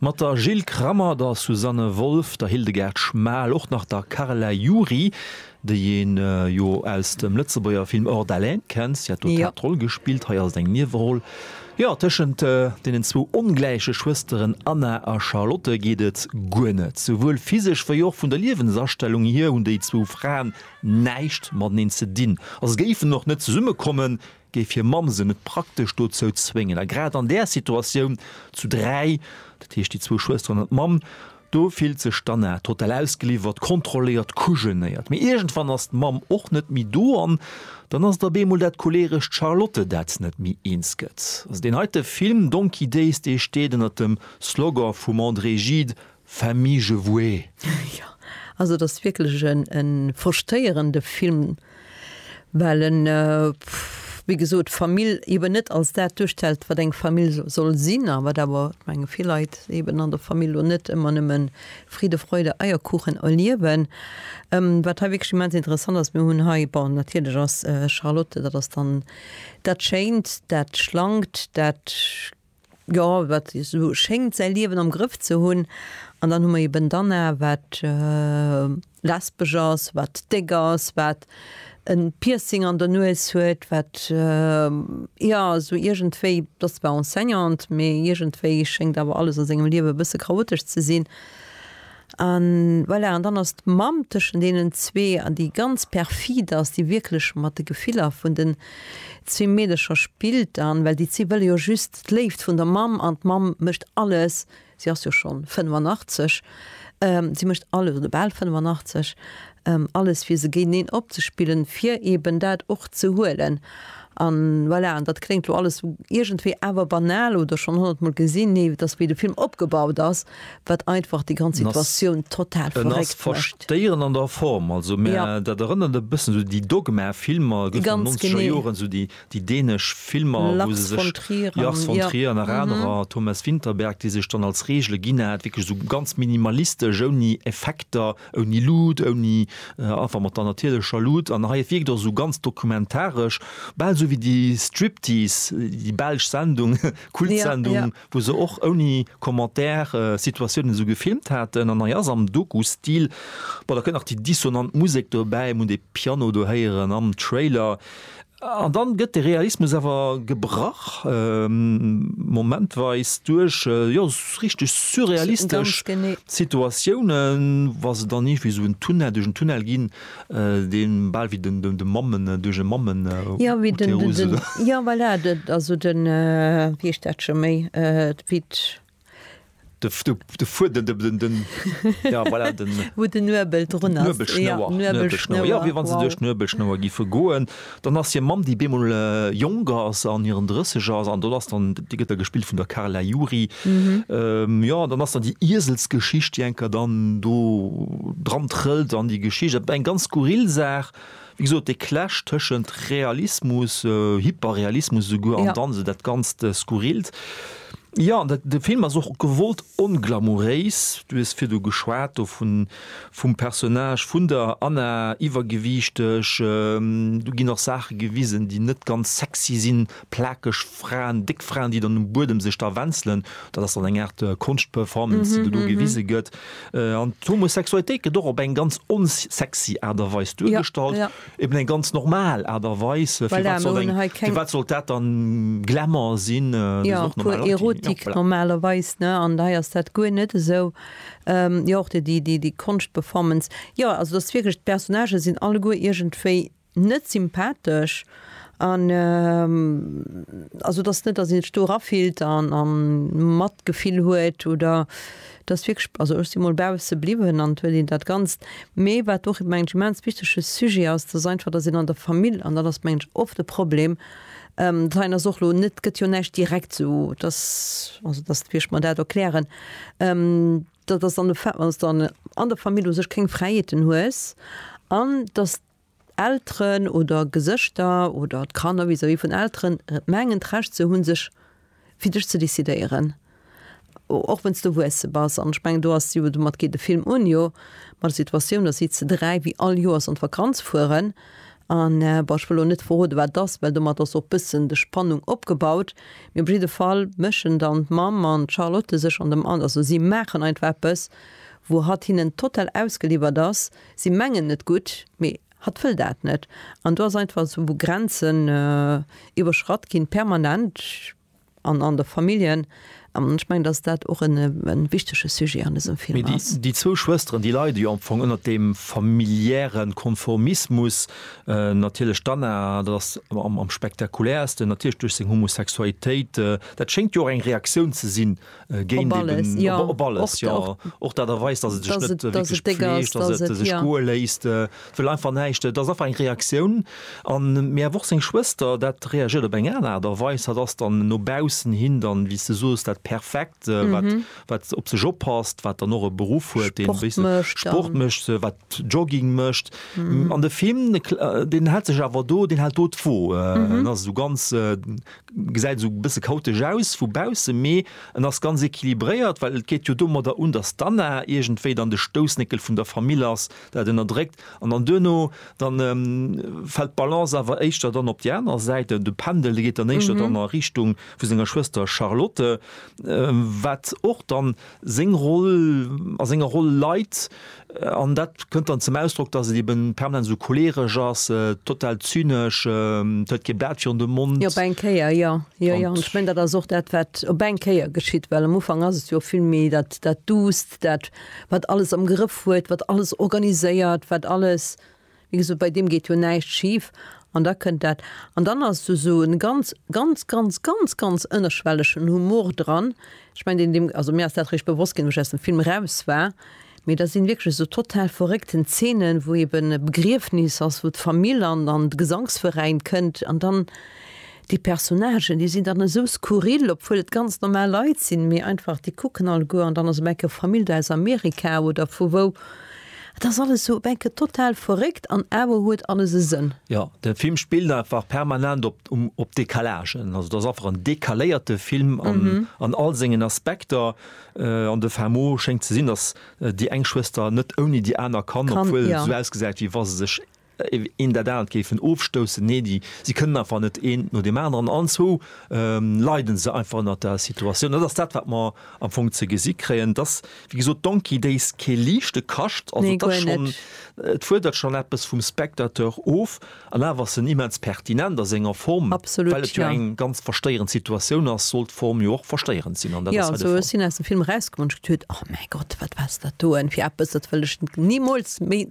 Mat der Jill Krammer, der Susanne Wolff, der Hildegard Schmal, och nach der Carla Jury, déi een jo aus dem Lëtzebuerger Film Hors d'haleine kennt, si hat do d'Haaptroll gespillt, hei ass et eng Nieweroll. Jo, tëschent deenen zwou ongläiche Schwësteren Anna a Charlotte geet et guer net. Souwuel physesch wéi och vun der Liewensastellung hier hunn déi zwou Fraen näischt mateneen ze dinn a se géifen och net zesummekommen, géif hir Mamm se net praktesch dozou zwéngen. A grad an där Situatioun zu dräi, dat heescht déi zwou Schwësteren an d'Mamm, do fillt sech d'Anna total ausgeliwwert, kontrolléiert, kujenéiert. Mee iergendwann ass d'Mamm och net méi do an dann ass et op eemol dat choleerescht Charlotte, dat net méi eens gëtt. Also deen heite Film Donkey Days, dee steet ënnert dem Slogan vum André Gide, Famille je voue. Jo, also et ass wierklech e frustréierende Film, well en, wéi gesot, d'Famill eben net als dat duerstellt, wat eng Famill soll sinn a wat awer, menge vill Leit eben an der Famill lo net ëmmer nëmme Friede, Freude, Eierkuchen erliewen. Wat hei wierklech immens interessant ass, mir hunn hei, bon, natierlech ass Charlotte, dat ass dann dat Schéint, dat Schlankt, dat. jo, wat esou schéngt säi Liewen am Grëff ze hunn an dann hu mer eben d'Anna wat lesbesch ass, wat déck ass, wat en Piercing an der Nues huet, wat jo esou iergendwéi, d'ass zwar Enseignante, mee iergendwéi schéngt awer alles a sengem Liewen e bësse chaotesch ze sinn. An voilà, an dann ass d'Mamm tëschent deenen zwee, an déi ganz perfid ass, déi wierklech mat de Gefiller vun den zwee Meedercher spillt dann, well déi zwee wëlle jo just d'Léift vun der Mamm, an d'Mamm mécht alles, si ass jo schonn 85, si mécht alles, oder bal 85, Alles fir se géinteneen opzespillen, fir eben dat och ze huelen. An voilà, an dat kléngt elo alles iergendwéi awer banal oder schonn honnertmol gesinn. Nee, et ass wéi de Film opgebaut ass, wat einfach déi ganz Situatioun total verréckt mécht. En ass verstéierend an der Form, also mä dat erënnert e bëssen esou déi Dogma-Filmer, gëtt an den nonzeger Joren, esou déi dänesch Filmer, wou se sech, Lars von Trier an nach anerer, Thomas Vinterberg, déi sech dann als Regele ginn hat, wierklech esou ganz minimalistesch, ouni Effekter, Ouni Luut, ouni, einfach mat der natierlecher Luut. An hei wierkt och esou ganz dokumentaresch, bal esou wéi déi Striptease, déi belsch Sendung, Kultsendung, wou se och ouni Commentaire Situatiounen esou gefilmt haten. An hei ass am Doku-Stil. Bon, da kënnt nach déi dissonant Musek dobäi, mir hunn dee Piano do héieren am Trailer. An dann gëtt de Realismus awer gebrach, momentweis, duerch, jo, richteg surrealistesch Situatiounen, wa se dann iergendwéi esou en Tunnel, duerch en Tunnel ginn, dee bal wéi den, den, de Mammen, duerch e Mammen-Uterus oder. Jo, voilà, also den, wéi heescht dat scho méi, wéi De Fuedem, den, ja voilà, den. Wou den Nuebel drun ass. D'Nuebelschnouer, Nuebelschnouer, jo, wéi wa se duerch d'Nuebelschnouer gife goen. Dann ass hir Mamm, déi bemol jonk ass, an hiren Drësseger ass an do ass dann, déi gëtt da gespillt vun der Carla Juri. Jo, an dann ass dann déi Ieselsgeschicht, déi enker dann do dran trëllt an déi Geschicht, eng ganz skurril Saach, Wéi gesot, dee Clash tëschent Realismus, Hyperrealismus esouguer an dann esou dat ganzt Skurrilt. Jo, de Film ass och gewollt onglamouréis. Du hues virdu geschwat do vun, vum Personnage vun der Anna, iwwergewiichteg. Do ginn och Saache gewisen, déi net ganz sexy sinn. plakeg Fraen, déck Fraen, déi dann um Buedem sech da wenzelen, dat ass dann eng Aart Konschtperformance, déi do do gewise gëtt. An d'Homosexualitéit gëtt och op eng ganz onsexy Aart a Weis duergestallt, eben eng ganz normal Aart a Weis. Firwat soll eng, firwat sollt dat dann Glamour sinn? Dat ass och normal. Jo, puer Erotik normalerweis, ne? An hei ass dat guer net esou. Jo, och déi, déi, déi Konschtperformance, jo, also et ass wierklech, d'Personnagen sinn alleguer iergendwéi, net sympathesch an also dass net dass een sech do erafillt an an Matgefill huet oder dass wierklech also ech si mol bausse bliwwen an et huet een dat ganzt mee wat och mengen ech immens wichtege Sujet ass dass einfach dass een an der Famill an dat ass mengen ech oft e Problem dat hei ass och lo net gëtt jo näischt direkt sou dass also dass wéi ech mer dat erklären dass dann de Fait dass dann an der Famill u sech keng Fräiheeten hues an dass Elteren oder Gesëschter oder d'Kanner vis-à-vis vun Elteren mengen d'Recht ze hunn sech fir dech ze decidéieren, och wenn's de erwuesse bass. An ech mengen do ass jo, domat geet de Film un jo, mat der Situatioun, datt si ze dräi wéi all Joers an d'Vakanz fueren an, bon ech wëll elo net verroden wat et ass, well domat ass och bëssen de Spannung opgebaut, mee op jidde Fall mëschen dann d'Mamm an d'Charlotte sech an dem, also si maachen einfach eppes wou hatt hinnen total ausgeliwwert ass, Si mengen et gutt, mee hatt wëll dat net. An do ass einfach esou, wou Grenzen iwwerschratt ginn, permanent an an de Familljen. An ech mengen, dass dat och e wichtege Sujet an dësem Film ass. Mee déi zwou Schwësteren, déi leide jo am Fong ënnert deem familiäre Konformismus. Natierlech d'Anna, dat ass am spektakuläersten, natierlech duerch seng Homosexualitéit. Dat schéngt jo och eng Reaktioun ze sinn Géint eben, op alles, jo. Och dat erweist, dass et sech net wierklech pfleegt, dass et sech goe léisst. Et wëll einfach näischt. Et ass einfach eng Reaktioun. A mee awer och seng Schwëster, dat reagiert op eng aner Aart a Weis. Hatt ass dann no baussen hin dann, wéi s de sos, dat Perfekt, wat, wat op sech oppasst, wat dann och e Beruff huet, deen e bësse Sport mécht, wat Jogging mécht. An de Film, deen hält sech awer do, deen hält do d'Wo. En ass esou ganz, Gesäit esou e bësse chaotesch aus vu bausse, mee en ass ganz equilibréiert, well et geet jo domadder un, datt d'Anna iergendwéi dann de Stoussnéckel vun der Famill ass, dat ënnerdréckt an dann duerno dann fält d'Balance awer éischter dann op déi aner Säit, de Pendel, dee geet dann éischter dann a Richtung vu senger Schwëster Charlotte, wat och dann seng Roll a senger Roll leit. An dat kënnt dann zum Ausdrock, datt et eben permanent esou choleeresch ass, total zynesch, et huet kee Blat virun de Mond. Jo, op eng Kéier, jo. Jo, jo. An ech mengen, dat ass och dat, wat op eng Kéier geschitt. Well am Ufank ass et jo vill méi dat, dat Duusst, dat, wat alles am Grëff huet, wat alles organiséiert, wat alles. Wéi gesot, bei deem geet jo näischt schif an da kënnt dat. An dann ass do esou e ganz, ganz, ganz, ganz, ganz ënnerschwellegen Humor dran. Ech mengen, deen, deem, also mir ass dat eréischt bewosst ginn, wou ech aus dem Film eraus war, mee da sinn wierklech esou total verréckten Zeenen, wou eben e Begriefnis ass, wou d'Famill an, an de Gesangsveräin kënnt an dann, Déi Personnagen, déi sinn dann esou skurril, obwuel et ganz normal Leit sinn, mee einfach, déi kucken alleguer, an dann ass op eng Kéier Famill do aus Amerika oder vu wou. Et ass alles esou op eng Kéier total verréckt an awer huet alles e Sënn. Jo, de Film spillt einfach permanent op, op Décalagen. Also et ass einfach en décaléierte Film an all sengen Aspekter. An de Fin mot schéngt ze sinn, dass déi eng Schwëster net ouni déi aner kann, obwuel se esou ausgesäit, wéi wa se sech Een dat anert géifen ofstoussen. Nee, déi, si kënnen einfach net eent no deem aneren. Anzwou leiden se einfach ënnert der Situatioun. Dat ass dat, wat mer am Fong ze gesi kréien. Et ass, wéi gesot, Donkey Days kee liichte Kascht. Also, et ass schonn, et fuerdert schonn eppes vum Spectateur of. An awer ass en immens pertinent a senger Form, well et jo eng ganz verstéierend Situatioun ass, soll d'Form jo och verstéierend sinn. An dat ass hei de Fall. Jo, ech sinn aus dem Film erausgekommen, hu mech geduet, Oh mäi Gott, wat war dat do en fir eppes, dat wëll ech nimools méi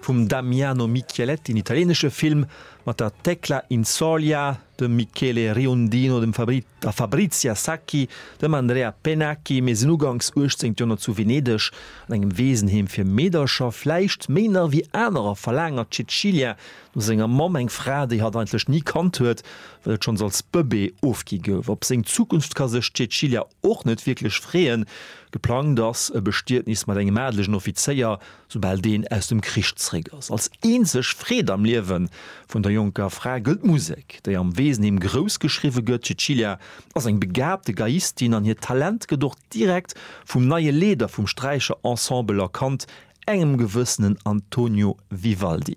Vum Damiano Michieletti en italienesche Film mat der Tecla Inzoglia, dem Michele Riondino, dem Fabri, der Fabrizia Sacchi, dem Andrea Pennacchi, mir sinn uganks uechtzéngt Joerhonnert zu Venedeg an engem Weesenheem fir Meedercher, vläicht méi nach ewéi anerer verlaangert Cecilia no senger Mamm, eng Fra déi hatt eigentlech ni kannt huet, well et schonns als Bëbee ofgi gouf. Op seng Zukunft ka sech d'Cecilia och net wierklech freeën, geplangt ass e Bestietnis mat engem adelegen Offizéier, Soubal deen aus dem Krich zréck ass. Als eenzeg Freed am Liewe vun der jonker Fra gëllt d'Musek, déi am Weesenheem grouss geschriwwe gëtt. D'Cecilia ass eng begaabte Geiistin an hiert Talent gëtt och direkt vum neie Leeder vum Sträicher Ensemble erkannt, engem gewëssenen Antonio Vivaldi.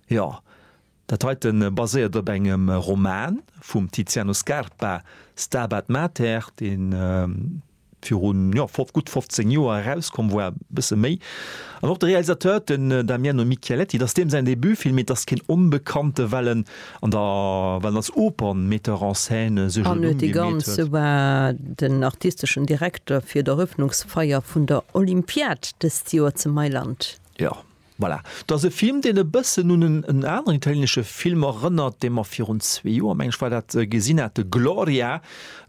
Jo, Dat heite baséiert op engem Roman vum Tiziano Scarpa, Stabat Mater, dee viru gutt 15 Joer erauskomm war, e bësse méi. An och de Realisateur, den Damiano Micheletti, et ass deem säin Debutfilm, mee et ass keen Onbekannte, well en als Oper-Metteur en scène sech en Numm gemeet huet. E war den artisteschen Direkter fir d'Eröffnungsfeier vun der Olympiad dëst Joer zu Mailand. Jo, Voilà, dat ass e Film, deen e bëssen un en aneren italienesche Film erënnert, dee mer virun zwee Joer, meng ech war dat, gesinn hate, Gloria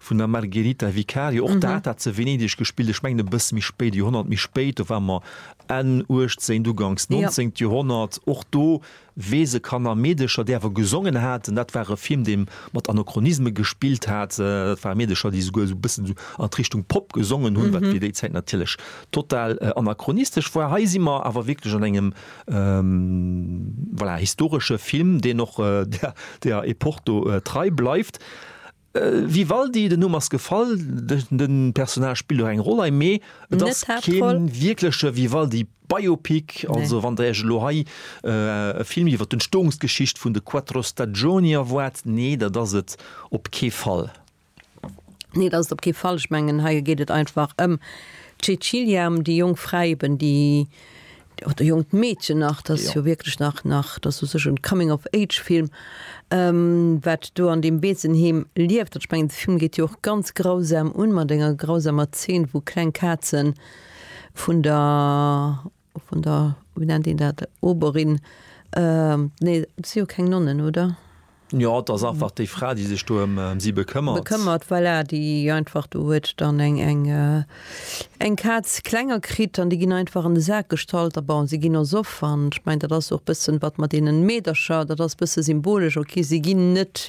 vun der Margherita Vicario. Och dat hat se a Venedeg gespillt, ech mengen e bësse méi spéit, e Joerhonnert méi spéit, do ware mer Enn uechtzéngt, uganks neunzéngt Joerhonnert. Och do weess e Kanner a Meedecher, déi awer gesongen haten, dat war e Film, dee mat Anachronisme gespillt hat, dat ware Meedecher, déi souguer esou e bëssen an d'Richtung Pop gesongen hunn, wat fir déi Zäit natierlech total anachronistesch war. Hei si mer awer wierklech an engem, voilà, historesche Film, deen och der Epoch do trei bleift. Vivaldi, den Numm ass gefall, de Personnage spillt och eng Roll hei, mee et ass kee wierkleche Vivaldi-Biopic. Also wann Der Iech elo hei e Film iwwer d'Entstoungsgeschicht vun de Quattro Stagioni erwaart, nee, dat ass et op kee Fall. Nee, dat ass et op kee Fall. Ech mengen, hei geet et einfach ëm d'Cecilia, ëm déi jonk Fra eben, déi, oder jonkt Meedchen nach, dat ass jo wierklech nach, nach, dat ass u sech e Coming of age Film, wat do an deem Weesenheem lieft. An ech mengen, de Film geet jo och ganz grausam un, mat enger grausamer Zeen, wou kleng Kazen vun der, Vun der, wéi nennt een dat, Oberin, nee, et si jo keng Nonnen, oder? Jo, et ass einfach déi Fra, déi sech do ëm si bekëmmert. Bekëmmert, voilà, déi einfach, do huet dann eng Kaz klenger kritt an déi ginn einfach an de Sak gestallt. A bon, si ginn och soff an ech mengen, dat ass och e bëssen, wat mat deenen Meedercher, dat ass e bësse symbolesch, ok, si ginn net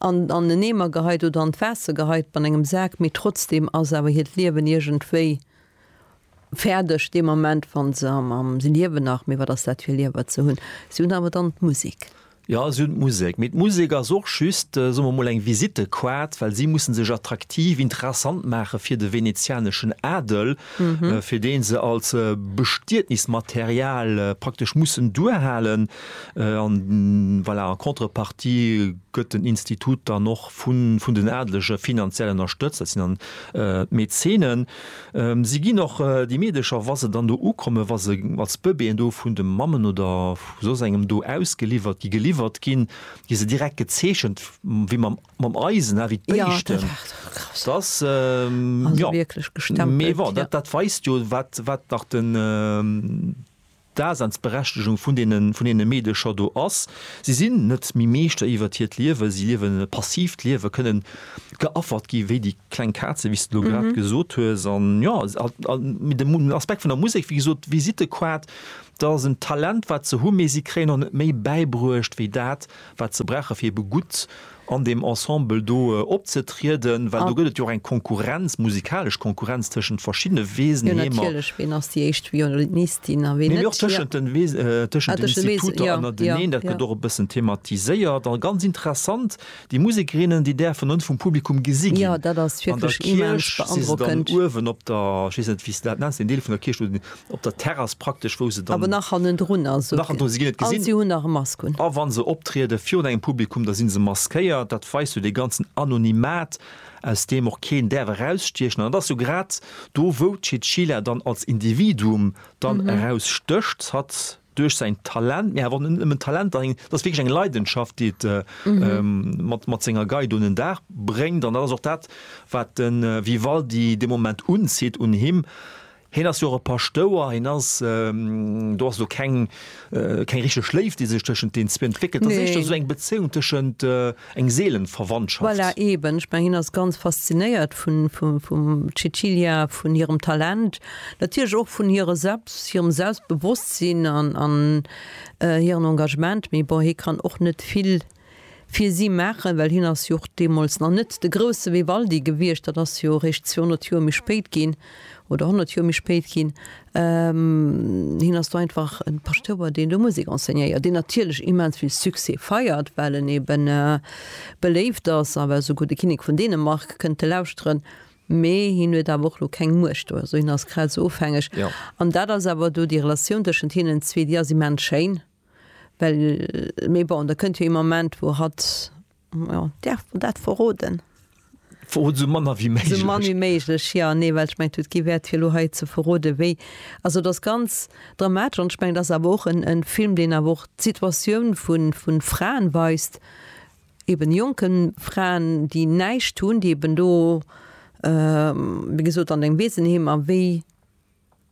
an en Eemer geheit oder an d'Waasser geheit, ma an engem Sak, mee trotzdem ass awer hiert Liewen iergendwéi Fäerdeg deen Moment, wann se am, am, se liewen nach, mee wat ass dat fir Liewer ze hunn? Si hunn awer dann d'Musek. Jo, si hunn d'Musek, mee d'Musek ass och just, soe mer emol, eng Visittequart, well si mussen sech attraktiv, interessant maache fir de venezianeschen Adel, fir dee se als Bestietnismaterial praktesch mussen duerhalen. An voilà, en contrepartie gëtt den Institut dann och vun, vun den Adelege finanziell ënnerstëtzt, dat sinn dann d'Mäzenen. Si ginn och déi Meedecher, wa se dann do ukommen, wa se als Bëbeeën do vun de Mammen oder vu soss engem do ausgeliwwert gi, geliwwert ginn, gi se direkt gezeechent, wéi mam, mam Eisen, ha, wéi d'Béischten. Dat ass, jo, mee bon, dat weist jo, wat, wat nach den, Daseinsberechtigung vun deenen, vun deene Meedche scho do ass. Si sinn net méi Meeschter iwwert hiert Liewe, si liewen e passiivt Liewe, kënnen geaffert gi wéi déi kleng Kaze, wéi s de elo grad gesot hues. An jo, mee den Aspekt vun der Musek, wéi gesot, d'Visite quat, dat ass en Talent, wat se hu, mee si kréien och net méi bäibruecht wéi dat, wat se brauche fir ebe gutt an deem Ensemble do opzetrieden, well do gëtt et jo och eng Konkurrenz, musikalesch Konkurrenz tëschent verschiddene Weesen, Heemer. Jo, natierlech, ween ass déi éischt Violinistin a ween net. Mee och tëschent den Instituter ënnerteneen, dat gëtt och e bëssen thematiséiert a ganz interessant, déi Musekerinnen, déi däerfen ënne vum Publikum gesi ginn. Jo, dat ass wierklech immens beandrockend. An der Kierch si se dann uewen op der, ech weess net, wéi se dat nennt, den Deel vun der Kierch, op der Terrass praktesch, wou se dann. Awer nach hannendrun, also. Nach hannendrun, se ginn net gesinn. A si hunn nach e Mask un. A wa se optriede virun engem Publikum, da si se maskéiert. Dat weist jo dee ganzen Anonymat, aus deem och keen däerf erausstiechen. An et ass jo grad do, wou d'Chinchilla dann als Individuum dann erausstécht, hat duerch säin Talent, mee awer och net nëmmen d'Talent, dach eng, et ass wierklech eng Leidenschaft, déi et mat, mat senger Gei do un den Dag bréngt. An dat ass och dat, wat de Vivaldi dee Moment unzitt un him. Hien ass jo och e Paschtouer, hien ass, do ass elo keng, keng richteg Léift, déi sech tëschent deen zwee entwéckelt, dat ass éischter esou eng Bezéiung tëschent, eng Seelenverwandschaft. Voilà, eben, ech mengen, hien ass ganz faszinéiert vun, vum Cecilia, vun hirem Talent, natierlech och vun hire Selbst, hirem Selbstbewosstsinn an, an hiren Engagement, mee bon, hie kann och net vill fir si maachen, well hien ass jo och deemools nach net de grousse Vivaldi gewiescht, dat ass jo eréischt 200 Joer méi spéit ginn, oder 100 Joer méi spéit ginn. Hien ass do einfach e Paschtouer, deen do Musek enseignéiert, deen natierlech immens vill Succès feiert, well en ebe beléift ass, awer esouguer de Kinnek vun Dänemark kënnt e lauschteren, mee hien huet awer och elo keng Muecht do, also hien ass grad esou ofhängeg. An dat ass awer do déi Relatioun tëschent hinnen zwee, déi ass immens schéin. Well, mee bon, da kënnt jo ee Moment, wou hatt, jo, däerf mer dat verroden? Verrot esou mann ewéi méiglech. Esou mann ewéi méiglech, jo. Nee, well ech mengen, et gi Wäert, fir elo hei ze verroden, wéi. Also et ass ganz dramatesch an ech mengen, et ass awer och e Film, deen awer och d'Situatioun vu Fraen weist, eben jonke Fraen, déi näischt hunn, déi eben do, wéi gesot, an engem Weesenheem a wéi.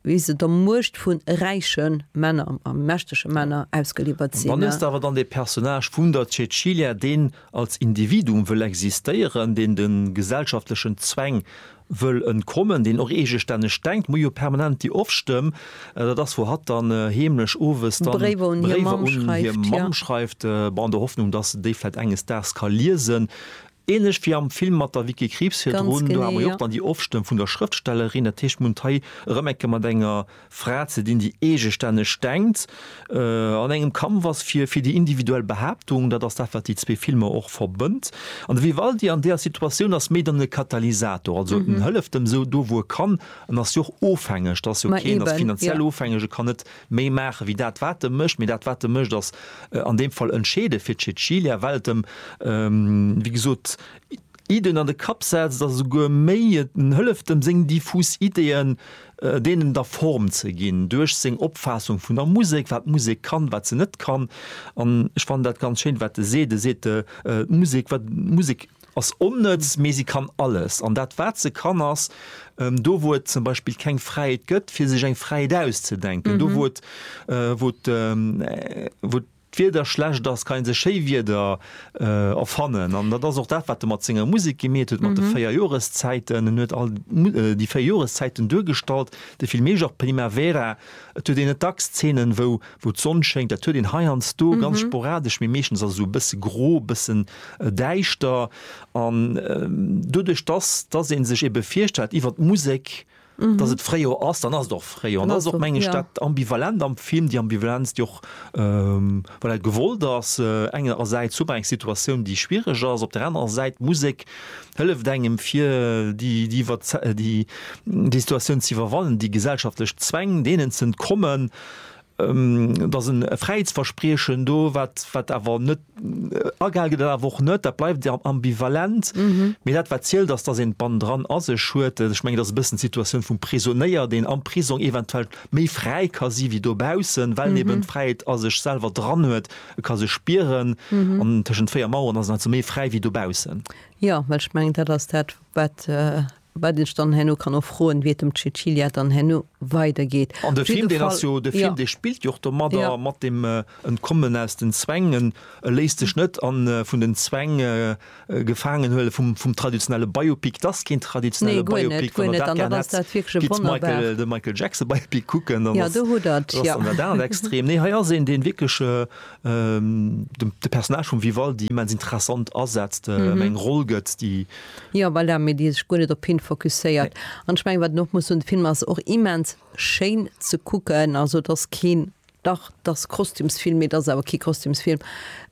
wéi se der Muecht vu räiche Männer a mächtege Männer ausgeliwwert sinn. Dann hues de awer dann dee Personnage vun der Cäcilia, deen als Individuum wëll existéieren, deen de gesellschaftlechen Zwäng wëll entkommen, deen och eegestänneg denkt. Mir hu jo permanent déi Off-Stëmm, dat ass, wou hatt dann heemlech owes dann Bréiwer un hir Mamm schreift, an der Hoffnung, dass se déi vläicht enges Daags ka liesen. Ähnlech wéi am Film mat der Vicky Krieps virdrun, do hate mer jo och dann déi Ofstëmm vun der Schrëftstellerin. Dat heescht, mir hunn et hei erëm eng Kéier mat enger Fra ze dinn, déi eegestänneg denkt, an engem Kampf ass fir fir déi individuell Behaaptung. Dat ass dat, wat déi zwee Filmer och verbënnt. An de Vivaldi an deeër Situatioun ass méi dann e Katalysator. Also en hëlleft em sou do, wou e kann. En ass jo och ofhängeg. Dat ass jo keen ass finanziell ofhängeg, e kann net méi maache wéi dat wat e mécht, mee dat wat e mécht ass an deem Fall entscheede fir d'Cecilia, well et em wéi gesot Iddien an de Kapp setzt a souguer méi et hëlleft em seng diffus Iddien deenen da Form ze ginn duerch seng Opfaassung vun der Musek, wat d'Musek kann, wat se net kann. An ech fannen dat ganz schéin wat e seet, e seet d'Musek, wat d'Musek Ass onnëtz, mee se kann alles. An dat, wat se kann, ass, do wou et zum Beispill keng Fräiheet gëtt, fir sech eng Fräiheet auszedenken, do wou et, wou et, wou d'Wieder schlecht ass, kann ee sech schéi Wieder erfannen. An dat ass och dat, wat e mat senger Musek gemeet huet, mat de véier Joreszäiten. En huet all déi véier Joreszäiten duergestallt, de Filmejo, d'Primavera. Et huet een net dacks Zeenen, wou wou d'Sonn schéngt. Dat huet een heiansdo, ganz sporadesch, mee meeschtens ass et esou e bësse gro, e bëssen däischter. An doduerch, dass dass ee sech ebe virstellt iwwer d'Musek, dass et Fréijor ass, dann ass et och Fréijor. An dat ass och, meng ech, dat Ambivalent am Film, déi Ambivalenz, déi och. Well dat gewollt ass. Engerersäits hu mer eng Situatioun, déi schwierig ass. Op der anerer Säit, d'Musek hëlleft engem, fir déi Situatioun ze iwwerwannen, déi gesellschaftlech Zwäng, deenen ze entkommen. Da ass e Fräiheetsverspriechen do, wat awer net agehale gëtt an awer och net. Dat bleift ambivalent. Mee dat, wat zielt, ass, dass een d'Band dran a sech huet. Ech mengen, dat ass e bëssen d'Situatioun vum Prisonéier, deen am Prisong eventuell méi fräi ka si wéi dobaussen, well en eben d'Fräiheet a sech selwer dran huet, e ka se spieren. An tëschent véier Maueren ass en also méi fräi wéi dobaussen. Jo, well ech mengen, dat ass dat, wat, wat ech dann herno kann och froen, wéi et dem Cecilia dann herno weidergeet. An de Film, deen ass jo, de Film, dee spillt jo och domadder, mat deem Entkommen aus den Zwäng. E léisst sech net an vun den Zwäng, Gefaangenhuele vum vum traditionelle Biopic, dass keen traditionelle Biopic, wann der dat gär hätt, gitt Michael de Michael Jackson Biopic kucken, dann ass dat dat aner Extrem. Nee, hei ass een, deen wierklech dem de Personnage vum Vivaldi immens interessant asetzt, ëm eng Roll gëtt, déi. Jo, voilà, mee déi sech guer net op hien fokusséiert. An ech mengen, wat een och muss soen, de Film ass och immens schéin ze kucken, also et ass keen Dach, t'ass Kostümsfilm, mee t'ass awer kee Kostümsfilm.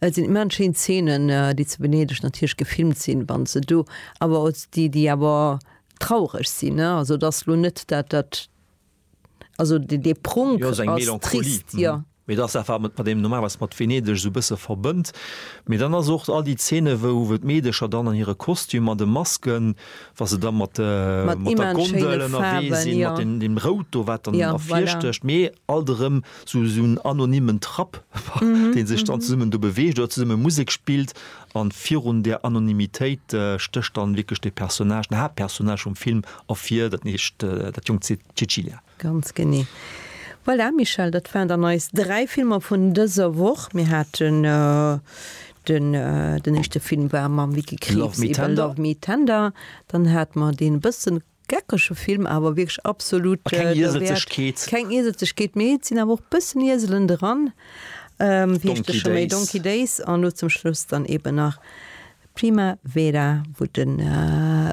Et sinn immerhin schéin Szenen, déi zu Venedeg natierlech gefilmt sinn, wa se do awer als déi, déi awer traureg sinn, ne. Also et ass lo net dat, dat, also dee Prunk ass trist, jo. Mee et ass dat, wat een mat deem normalerweis mat Venedeg esou e bësse verbënnt. Mee dann ass och all déi Szene wou d'Meedercher dann an hire Kostümer, de Masken, Wa se da mat der Gondel ënnerwee sinn, mat deem Rout do, wat dann ervirstécht, mee alt erëm sou en anonymen Trapp, dee sech dann zesummen do beweegt oder zesumme Musek spillt. A virun där Anonymitéit stécht dann wierklech dee Personnage, den Haaptpersonnage vum Film ervir, dat heescht dat jonkt Cecilia. Ganz genee. Voilà, Michèle, dat waren dann eis dräi Filmer vun dëser Woch. Mir haten den, den éischte Film war mam Vicky Krieps iwwer Love Me Tender, dann hat mer deen e bësse geckege Film, awer wierklech absolut derwäert, keng Ieselzegkeet, mee et sinn awer och e bëssen Ieselen dran, wéi heescht dee scho méi, Donkey Days, an elo zum Schluss dann eeben nach Primavera, wou de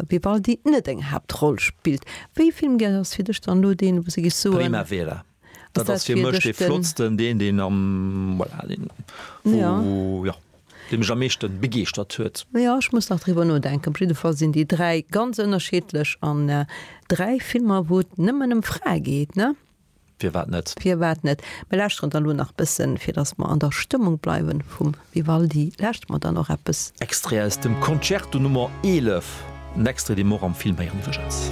Vivaldi net eng Haaptroll spillt. Wéi Film gär ass fir dech dann elo deen, wou se géifs soen. Primavera, dat ass fir mech dee flottsten, deen deen am, voilà, deen wou, jo, dee mech am meeschten begeeschtert huet. Jo, ech muss nach driwwer nodenken. Op jidde Fall sinn déi dräi ganz ënnerscheedlech an dräi Filmer wou et nëmmen ëm Frae geet, ne? Firwat net? Firwat net? Mir lauschteren dann elo nach bëssen, fir dass mer an der Stëmmung bleiwen vum Vivaldi, lauschteren mer dann och eppes. Extrait aus dem Concerto Nummer 11, en Extrait dee mer och am Film héieren iwwregens.